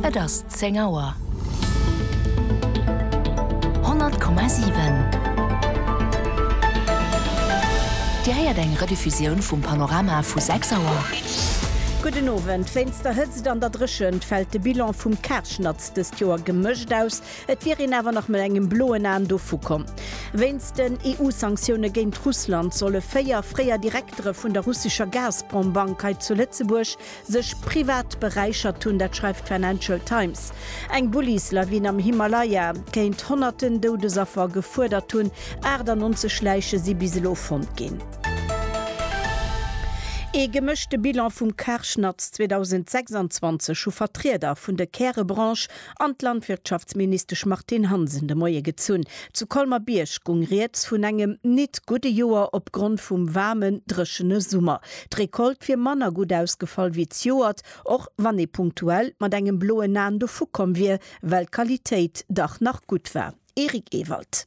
Et ass zéng Auer. 100,7 Dir héiert eng Rediffusioun vum Panorama vu 6 Auer. Gudden Owend. Wéinst der Hëtzt an der Dréchent fält de Bilan vum Kaarschnatz dëst Joer gemëscht aus. Et wier een awer nach mat engem bloen Aen dovu komm. Wéinst den EU-Sanktioune géint Russland solle véier fréier Direktere vun der russescher Gazprom-Bank hei zu Lëtzebuerg Sech privat beräichert hunn, dat schreift d'Financial Times. Eng Bullislawin am Himalaya kéint honnerten Doudesaffer gefuerdert hunn, 98 Läiche si bis elo fonnt ginn. Ee gemëschte Bilan vum Karschnatz 2026 hu Vertrieder vun de Kärebranche an d'Landwirtschaftsministesch Martine Hansen de Moie gezunn. Zu Colmer-Bierg gung rieds vun engem nit gudde Joer opgrond vum waarmen, dréchene Summer. D'Recolte wier manner gutt ausgefall wéi d'Joert, och wann ee punktuell mat engem bloen Aen dovukomm wier, well d'Qualitéit dach nach gutt war. Eric Ewald.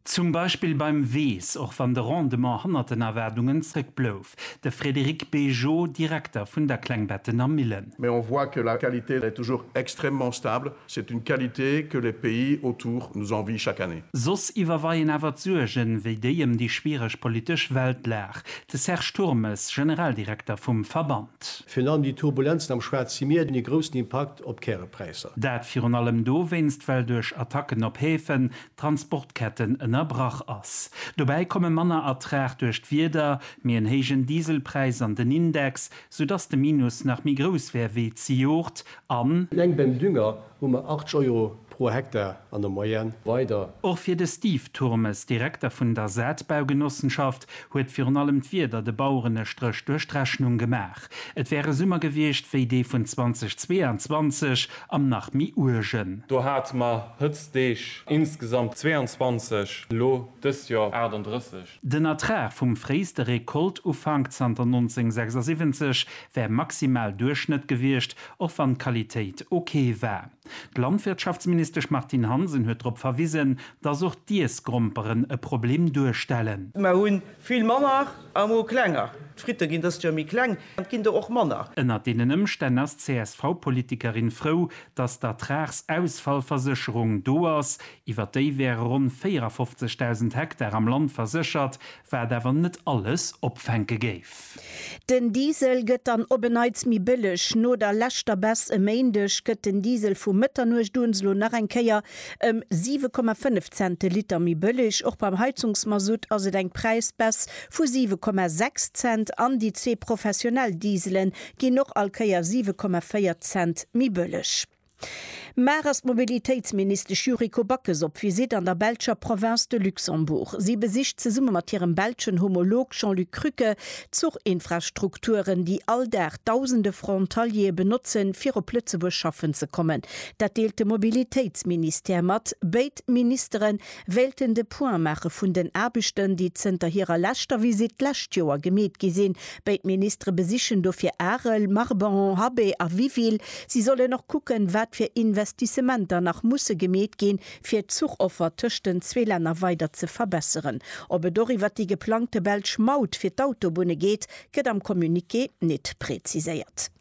Zum Beispill beim Weess, och wann de Rendement hannert den Erwaardungen zréck blouf. De Frédéric Bégeot, Direkter vun der Klengbettener Millen. Mais on voit que la qualité est toujours extrêmement stable, c'est une qualité que les pays autour nous envient chaque année. Soss iwwerweien awer d'Suergen, wéi déi ëm déi schwiereg politesch Weltlag. De Serge Turmes, Generaldirekter vum Verband. Virun allem déi Turbulenzen am Schwaarze Mier hunn ee groussen Impakt op d'Kärepräisser. Dat virun allem dowéinst, well duerch Attacken op Häfen Transportketten ënnerbrach ass. Dobäi komme manner Ertrag duerch d'Wieder, méi en héijen Dieselpräis an den Index, soudass de Minus nach méi grouss wär wéi zejoert an. Eleng beim Dünger hu mer 80 Euro pro Hektar an der Moyenne weider. Och fir de Steve Turmes, Direkter vun der Saatbaugenossenschaft, huet virun allem d'Wieder de Baueren e Stréch duerch d'Rechnung gemaach. Et wär e Summer gewiescht wéi dee vun 2022 am nach méi uergen. Do hate mer Hëtztdeeg insgesamt 22, elo dëst Joer 38. Den Ertrag vum fréiste Rekoltufank zanter 1976 wär maximal Duerchschnëtt gewiescht, och wann d'Qualitéit ok war. D'Landwirtschaftsministesch Martine Hansen huet drop verwisen, dass och d'Iessgromperen e Problem duerstellen. Mer hu vill manner Amo klenger. D'Fritte ginn dëst Joer méi kleng an et ginn der och manner. Ënnert deenen Ëmstänn ass d'CSV-Politikerin frou, datt d'Ertragsausfallversécherung do ass. Iwwer déi wäre ronn 54.000 Hektar am Land verséchert, wat awer net alles opfänke géif. Den Diesel gëtt dann op en Neits méi bëlleg. No der leschter Baisse e Méindeg gëtt den Diesel vu Mëtternuecht un elo nach eng Kéier ëm 7,5 Cent de Liter méi bëlleg. Och beim Heizungsmasutt ass et eng Präisbaisse vu 7,6 Cent an déi zwee professionell Diesele ginn och all Kéier 7,4 Cent méi bëlleg. Mar ass d'Mobilitéitsministesch Yuriko Backes op Visitt an der belscher Province de Luxembourg. Si besicht zesumme mat hirem belschen Homolog Jean-Luc Krücke d'Zuchinfrastrukturen, déi all Dag dausende Frontaliere benotzen, fir op Lëtzebuerg schaffen ze kommen. Dat deelt de Mobilitéitsministère mat. Béid Ministere wéilten de Point maache vun den Aarbechten, déi zënter hirer leschter Visitt d'lescht Joer gemeet gi sinn. Béid Ministere besichen dofir Arel, Marbehan, Habé a Wiville. Si sollen och kucken, wat fir Investissementer nach musse gemeet ginn, fir d'Zuchoffer tëscht den zwee Länner weider ze verbesseren. Ob et och iwwert déi geplangte belsch Maut fir d'Autobunne geet, gëtt am Communiqué nit präziséiert.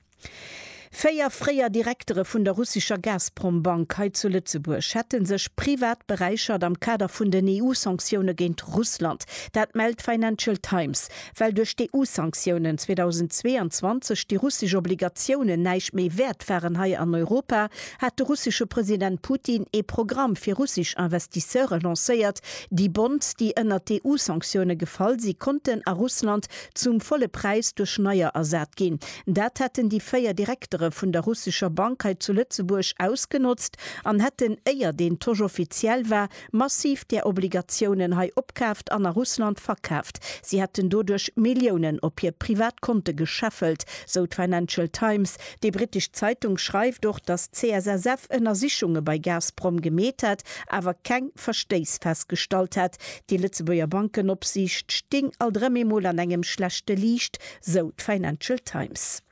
Véier fréier Direktere vun der russescher Gazprom-Bank hei zu Lëtzebuerg hätte sech privat beräichert am Kader vun den EU-Sanktioune géint Russland. Dat mellt d'Financial Times. Well duerch d'EU-Sanktiounen 2022 déi russesch Obligatiounen näischt méi wäert waren hei an Europa, hat de russesche President Putin ee Programm fir russesch Investisseure lancéiert. Déi Bonds, déi ënnert d'EU-Sanktioune gefall si, konnten a Russland zum volle Präis duerch neier ersat ginn. Dat hätten déi véier Direktere vun der russescher Bank hei zu Lëtzebuerg ausgenotzt an hätten, éier deen Tosch offiziell war, massiv där Obligatiounen hei opkaaft an a Russland verkaaft. Si hätten doduerch Milliounen op hir privat Konte gescheffelt, sou d'Financial Times. Déi brittesch Zeitung schreift och, datt d'CSSF Ënnersichunge bei Gazprom gemeet hätt, awer keng Verstéiss festgestallt hätt. Déi Lëtzebuerger Bankenopsiicht sting alt erëm eemol an engem schlechte Liicht, sou d'Financial Times.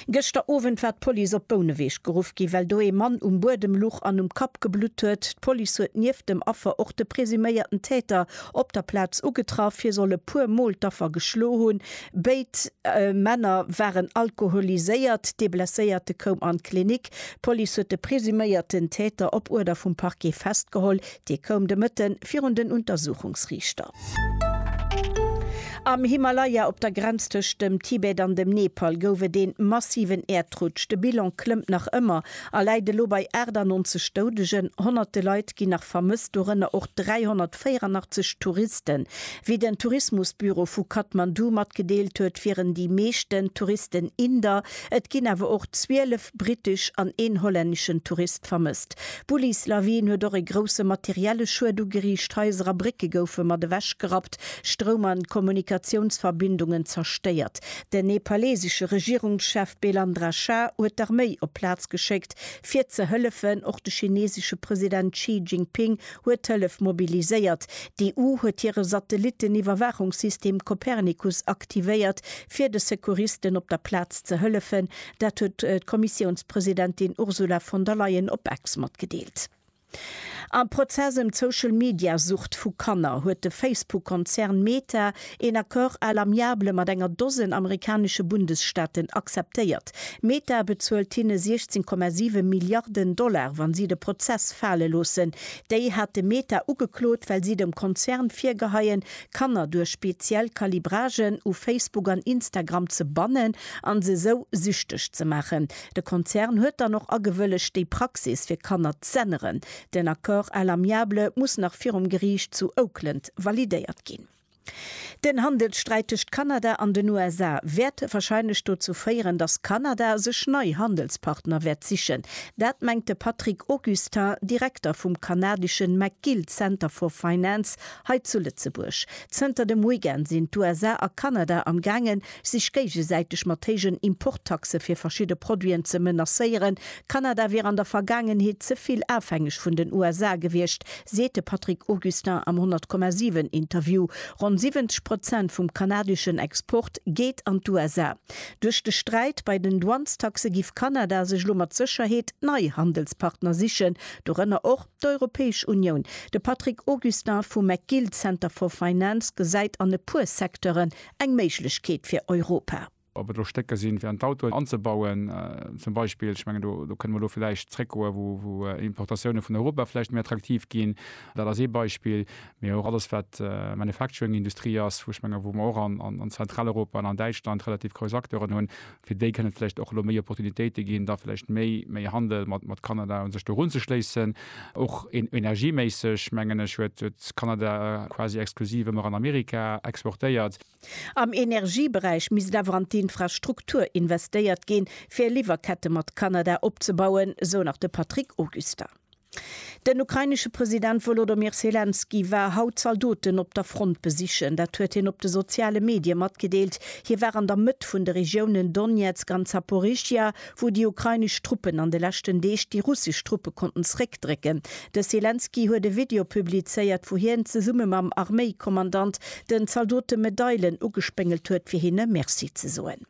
Gëschter Owend war d'Police op Bouneweg geruff ginn, well do ee Mann um Buedem luch an um Kapp geblutt huet. D'Police huet nieft dem Affer och de presuméierten Täter op der Plaz ugetraff. Hie soll e puer Mol d'Affer geschloe hunn. Béid Männer waren alkoholiséiert. De Blesséierte koum an d'Klinik. D'Police huet de presuméierten Täter op Uerder vum Parquet festgeholl. Dee koum de Mëtte virun den Untersuchungsriichter. Am Himalaya, op der Grenz tëscht dem Tibet an dem Nepal, gouf et ee massiven Äerdrutsch. De Bilan klëmmt nach ëmmer a läit elo bei 98 Doudegen. Honnerte Leit ginn nach vermësst, dorënner och 384 Touristen. Wéi den Tourismusbüro vu Kathmandu matgedeelt huet, wieren déi meeschten Touristen Inder, et ginn awer och 12 brittesch an een hollänneschen Tourist vermësst. D'Bullis Lawin huet och e grousse materielle Schued ugeriicht, Haiser a Brécke goufe mat ewech gerappt, Stroum an Kommunikatiounsverbindungen zerstéiert. Den nepalesesche Regierungschef Belandra Shah huet d'Arméi op d'Plaz geschéckt fir ze hëllefen. Och de chinesesche President Xi Jinping huet Hëllef mobiliséiert. D'EU huet hire Satellitten-Iwwerwaachungssystem Copernicus aktivéiert fir de Secouristen op der Plaz ze hëllefen. Dat huet d'Kommissiounspresidentin Ursula von der Leyen op Ex matgedeelt. Am Prozess ëm d'Social-Media-Sucht vu Kanner huet de Facebook-Konzern Meta een Accord à l'amiable mat enger Dosen amerikanesche Bundesstaaten akzeptéiert. Meta bezuelt hinne 16,7 Milliarden Dollar, wa si de Prozess fale loossen. Déi hate Meta ugeklot, well si dem Konzern virgeheien, Kanner duerch speziell Calibragen u Facebook an Instagram ze bannen an se sou süchteg ze maachen. De Konzern huet dann och agewëllegt déi Praxis fir Kanner z'änneren. Den Accord à l'amiable muss nach virum Geriicht zu Oakland validéiert ginn. Den Handelssträit tëscht Kanada an den USA wäert warscheinlech dozou féieren, datt Kanada sech nei Handelspartner wäert sichen. Dat mengt de Patrick Augustin, Direkter vum kanadeschen McGill Center for Finance Hei zu Lëtzebuerg. Zënter dem Weekend sinn d'USA a Kanada am gaangen, sech géigesäiteg mat héijen Importtaxe fir verschidde Produiten ze menacéieren. Kanada wier an der Vergaangenheet ze vill afhängeg vun den USA gewiescht, seet de Patrick Augustin am 100,7 Interview. Ronn 70 Prozent vum kanadeschen Export geet an d'USA. Duerch de Sträit bei den Douanestaxe giff Kanada sech elo mat Sécherheet nei Handelspartner sichen, dorënner och. D'Europäesch Unioun, De Patrick Augustin vum McGill Center for Finance gesäit an e puer Secteuren eng Méiglechkeet fir Europa. Ob et elo Stécker sinn, fir an d'Autoen anzebauen, zum Beispill, ech mengen, do kënne mer elo vläicht zréckgoen, wou Importatioune vun Europa vläicht méi attraktiv ginn, dat ass ee Beispill, mee och alles, wat Manufacturing-Industrie ass, wou, ech mengen, wou mer och an Zentraleuropa an an Däitschland relativ grouss Acteuren hunn. fir déi kënne vläicht och elo méi Opportunitéite ginn, da vläicht méi, méi Handel mat Kanada u sech do erunzeschléissen. Och energieméisseg, mengen ech, huet Kanada quasi exklusiv ëmmer an Amerika exportéiert. Am Energieberäich misst awer an d'Infrastruktur investéiert ginn, fir Liwwerkette mat Kanada opzebauen, sou nach de Patrick Augustin. Den ukrainesche President Wolodomir Selenskyj war haut Zaldoten op der Front besichen. Dat huet hien op de soziale Medie matgedeelt. Hie war an der Mëtt vun de Regiounen Donezk an Zaporizhzhia, wou déi ukrainesch Truppen an de leschten Deeg déi russesch Truppe konnten zeréckdrécken. De Selenskyj huet e Video publizéiert, wou hien zesumme mam Arméikommandant den Zaldote Medailen ugespéngelt huet, fir hinne Merci ze soen.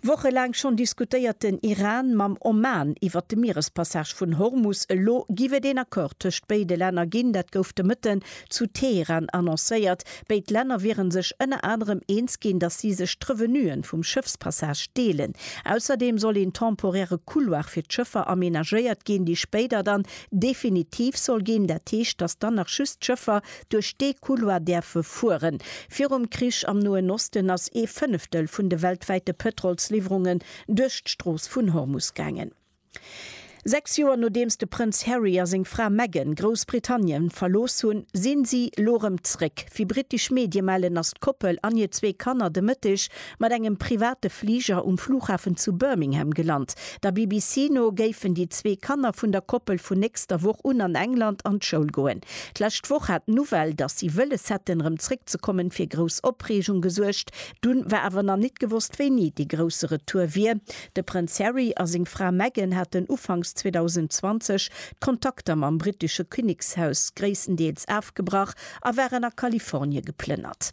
Wochelaang schonn diskutéiert den Iran mam Oman iwwert de Mierespassage vun Hormus. Elo giff et een Accord tëscht béide Länner ginn. Dat gouf de Mëtten zu Teheran annoncéiert. Béid Länner wieren sech ënner anerem eens ginn, datt si sech d'Revenuen vum Schëffspassage deelen. Ausserdeem soll een temporäre Couloir fir d'Schëffer amenagéiert ginn, dee spéider dann definitiv soll ginn. Dat heescht, datt dann nach just d'Schëffer duerch dee Couloir däerfe fueren. Virum Krich am Noen Osten ass ee Fënneftel vun de weltwäite Pëtrolsliwwerungen duerch d'Strooss vun Hormus gaangen. Sechs Joer nodeems de Prënz Harry a seng Fra Meghan Groussbritannien verlooss hunn, sinn si lo rëm zréck. Wéi brittesch Medie mellen, ass d'Koppel an hir zwee Kanner de Mëtteg mat engem private Fliger um Flughafen zu Birmingham gelant. Der BBC no géifen déi zwee Kanner vun der Koppel vun nächster Woch un an England an d'Schoul goen. D'lescht Woch hat d'Nouvelle, datt si wëlles hätten, rëm zréckzekommen, fir grouss Opreegung gesuergt. Dunn war awer nach nit gewosst, wéini dee grousse Retour wier. De Prënz Harry a seng Fra Meghan haten ufanks 2020 d'Kontakter mam brittesche Kinnekshaus gréisstendeels afgebrach a waren a Kalifornie geplënnert.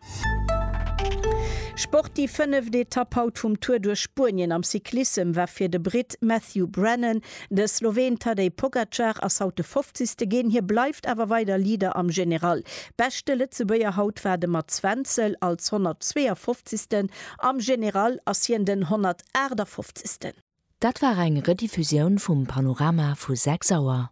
Sport, Déi fënneft Etapp haut vum Tour duerch Spuenien am Cyclissem war fir de Britt Matthew Brennan. De Sloween Tadej Pogacar ass haut de Fofzigste ginn, hie bleift awer weider Leader am General. Beschte Lëtzebuerger haut war de Mats Wenzel, als 152. Am General ass hien den 158. Dat war eng Rediffusioun vum Panorama vu 6 Auer.